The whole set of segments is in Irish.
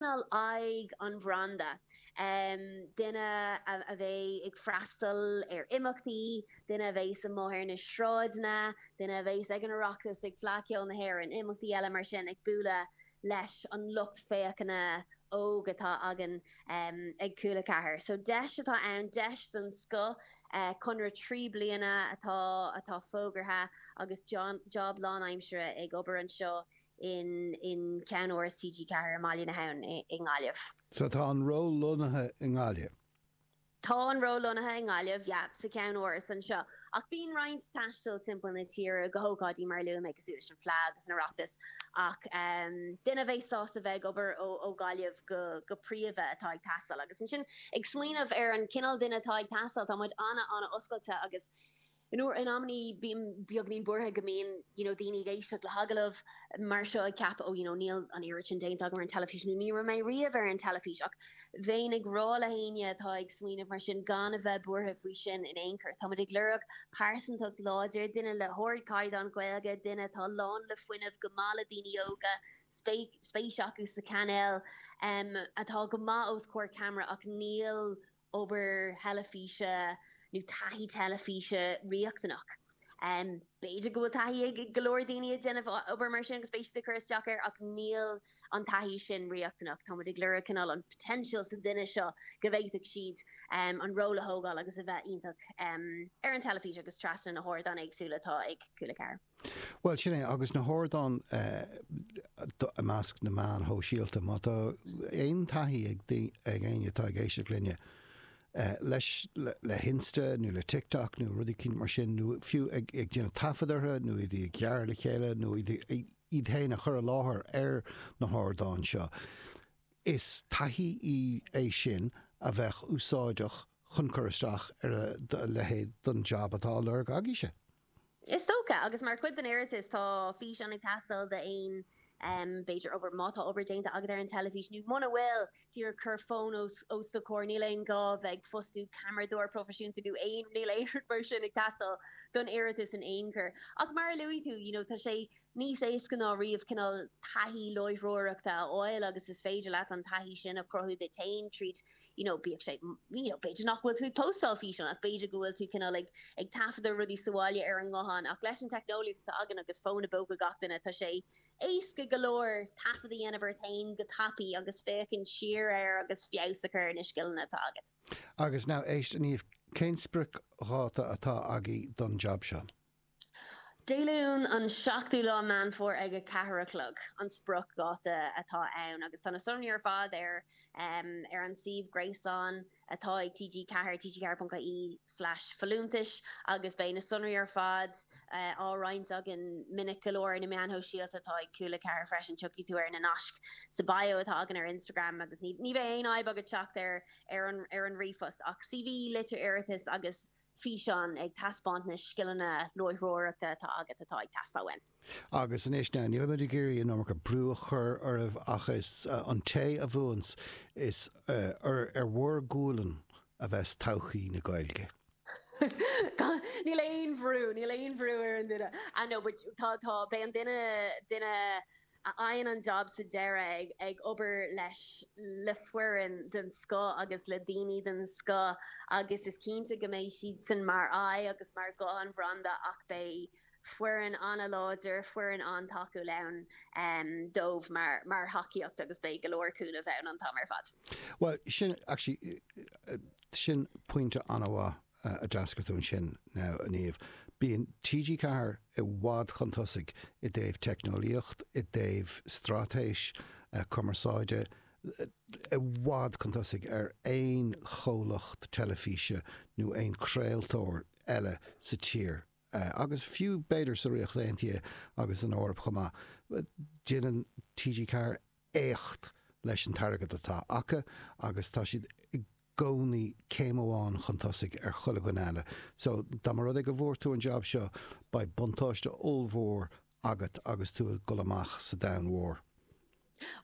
cineál aghaidh an bhranda, duine a bheidh ag freastal ar imeachtaí, duine a bheas amuigh ar na sráideanna, duine a bheas ag an Oireachtas na, ag Fleadh Cheoil na hÉireann, imeachtaí eile mar sin, ag bualadh leis an lucht féachana óg atá againn ag Cúla 4. So deis atá ann, deis den scoth, conradh trí bliana atá atá fógartha agus job lánaimsire ag obair anseo i i gceannáras TG4 i mBaile na hAbhann i nGaillimh. Sea, tá an ról lonnaithe i nGaillimh. Tá an ról lonnaithe i nGaillimh, yeah, sa cheannáras anseo, ach bíonn roinnt taistil timpeall na tíre go hócáidí mar a luaigh mé, cosúil leis an Fleadh agus an Oireachtas, ach duine a bheidh sásta bheith ag obair ó Ghaillimh go príomha atá ag teastáil. Agus ansin, ag smaoineamh ar an gcineál duine atá ag teastáil, tá muid ana-ana-oscailte agus In amanna bím beagainín buartha go mbíonn you know daoine ag éisteacht le hagallamh mar seo ag ceapadh oh you know níl an oiread sin déanta agam ar an teilifís nó ní raibh mé riamh ar an teilifís ach bheinn ag rá le héinne atá ag smaoineamh mar sin gan a bheith buartha faoi sin in aon chor. Táimid ag lorg pearsantacht láidir, duine le hardchaighdeán Gaeilge, duine atá lán le fuinneamh, go maith le daoine óga, spéis acu sa chainéal, atá go maith os comhair camera ach níl obair theilifíse nó taithí teilifíse riachtanach. B'fhéidir go bhfuil taithí ag go leor daoine ag déanamh obair mar sin agus beidh siad ag cur isteach air ach níl an taithí sin riachtanach. Táimid ag lorg cineál an potential sa duine seo go bhféadfadh siad an ról a thógáil agus a bheith iontach ar an teilifís agus trasna na hardáin éagsúla atá ag Cúla 4. Bhuel, sin é, agus na hardáin i measc na meán sóisialta. Má tá aon taithí ag éinne atá ag éisteacht linne leis, le hInsta nó le TikTok nó rudaí mar sin, nó fiú ag déanamh taifead orthu nó iad a ghearradh le chéile nó iad féin a chur i láthair ar na hardáin seo, is taithí í é sin a bheadh úsáideach chun cur isteach ar a leithéid de jab atá á lorg agaibhse. Is dócha, agus mar chuid den iarratas tá físeán ag teastáil d'aon, b'fhéidir, obair, má tá obair déanta agat ar an teilifís nó muna bhfuil, díreach cuir fón os do comhair, níl aon gá bheith ag fostú ceamaradóir proifisiúnta nó aon, níl aon rud mar sin ag teastáil don iarratas in aon chor. Ach mar a luaigh tú, you know, tá sé. níos éasca ná riamh cineál taithí láithreoireachta a fháil agus is féidir leat an taithí sin a chruthú duit féin tríd you know bíodh sé you know b'fhéidir nach bhfuil tú ag postáil físeáin ach b'fhéidir go bhfuil tú cineál ag ag taifeadadh rudaí sa bhaile ar an nguthán ach leis an teicneolaíocht atá againn agus fón i bpóca gach duine tá sé éasca go leor taifead a dhéanamh ort féin go tapaí agus féachaint siar air agus feabhas a chur ar na scileanna atá agat. Agus now éist a Niamh, cén spriocdháta atá agaibh don job seo? Dé Luain an 7ú lá Meán Fómhair ag a cheathair a chlog an spriocdháta atá ann agus tá na sonraí ar fad ar ar an suíomh gréasáin atá ag TG4, tg4.ie/folúntais, agus beidh na sonraí ar fad á roinnt againn minic go leor ar na meáin shóisialta atá ag Cúl 4 freisin. Tiocfaidh tú ar na naisc sa bio atá againn ar Instagram agus ní ní bheidh aon fhadhb agat teacht ar ar an ar an ríomhphost ach CV, litir iarratais agus físeán ag taispeáint na scileanna láithreoireachta atá agat atá ag teastáil uainn. Agus anois now, níl muid ag iarraidh an iomarca brú a chur oraibh ach is an té a bhuanns, is ar bhur gualainn a bheas todhchaí na Gaeilge. Níl aon bhrú, níl aon bhrú ar an duine. Ah no, but tá, tá, beidh an duine, duine. a fhaigheann an jab sa deireadh, ag obair leis le foireann den scoth agus le daoine den scoth agus is cinnte go mbeidh siadsan mar aghaidh agus mar ghuth an bhranda ach beidh foireann an-láidir, foireann an-tacúil ann dóibh mar thacaíocht agus beidh go leor cúnamh ann an t-am ar fad. Bhuel, sin actually, sin pointe an-mhaith. a d'ardaigh tú ansin now, a Niamh. Bíonn TG4 i bhfad chun tosaigh i dtaobh teicneolaíocht, i dtaobh straitéis cumarsáide, i bhfad chun tosaigh ar aon chomhlacht teilifíse nó aon chraoltóir eile sa tír agus fiú b'fhéidir sa Ríocht Aontaithe agus san Eoraip chomh maith. Déanann TG4 éacht leis an t-airgead atá acu agus tá siad i gcónaí céim amháin chun tosaigh ar chuile dhuine eile. So, dá mba rud é go bhfuair tú an jab seo, beidh buntáiste ollmhór agat agus tú ag dul amach sa domhan mhór.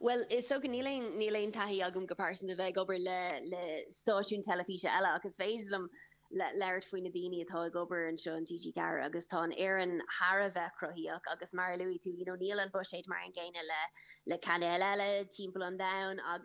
Bhuel, is dócha, níl aon, níl aon taithí agam go pearsanta bheith ag obair le, le stáisiún teilifíse eile ach is féidir liom, le labhairt faoi na daoine atá ag obair anseo in TG Ceathair agus tá an fhoireann thar a bheith cruthaíoch agus mar a luaigh tú you know níl an buiséad mar an gcéanna le le cainéil eile timpeall an domhain agus